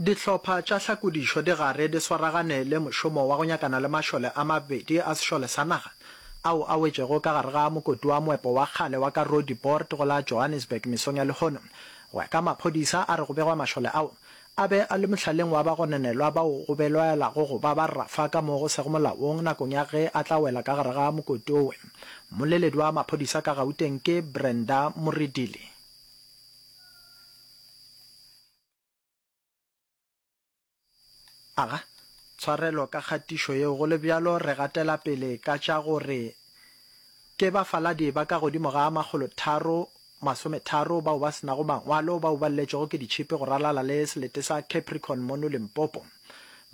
Dihlopha tša hlakodišo di gare di swaragane le mošomo wa go nyakana le mašole a mabedi a sešole sa naga ao a wetšego ka gare ga mokoti wa moepo wa kgale wa ka Roodepoort go la Johannesburg mesong ya lehono. Go ya ka maphodisa a re go begwa mašole ao a be a le mohlaleng wa bagononelwa bao go belaelago go ba ba rafa ka mo go sego molaong nakong ya ge a tla wela ka gare ga mokoti owe. Mmoleledi wa maphodisa ka Gauteng ke Brenda Moredili. Aga tshwarelo ka kgatišo yeo, go le bjalo re gatela pele ka tša gore ke bafaladi ba ka godimo ga makgolo tharo masometharo bao ba se nago mangwalo bao ba lletšwego ke ditšhipi go ralala le selete sa Capricorn mono Limpopo.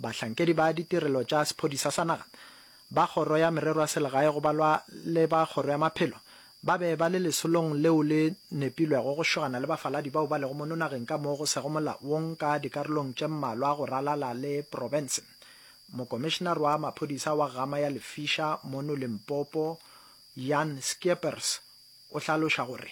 Bahlankedi ba ditirelo tša sephodisa sa naga ba Kgoro ya Merero ya Selegae go balwa le ba Kgoro ya Maphelo ba be ba le lesolong leo le nepilwego go šogana le bafaladi bao ba lego mono nageng ka mo go sego molaong ka dikarolong tše mmalwa go ralala le profense. Mokomišenare wa maphodisa wa Gama ya Lefisa mono Limpopo, Jan Skeepers, o hlaloša gore,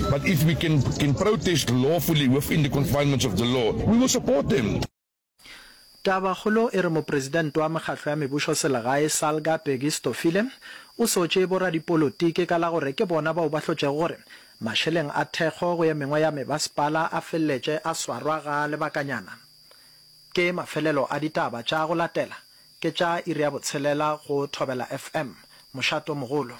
But if we can can protest lawfully within the confinements of the law, we will support them. Tabakgolo e re mopresidente wa mekgatlo ya mebusoselegae Salga Peggy Stofile o sotše boradipolotiki ka la gore ke bona bao ba hlotšego gore mašeleng a thekgo go ye mengwe ya mebasepala a feleletše a swarwa ga lebakanyana. Ke mafelelo a ditaba tša go latela ke tša iri ya botshelela go Thobela FM. Mošato mogolo.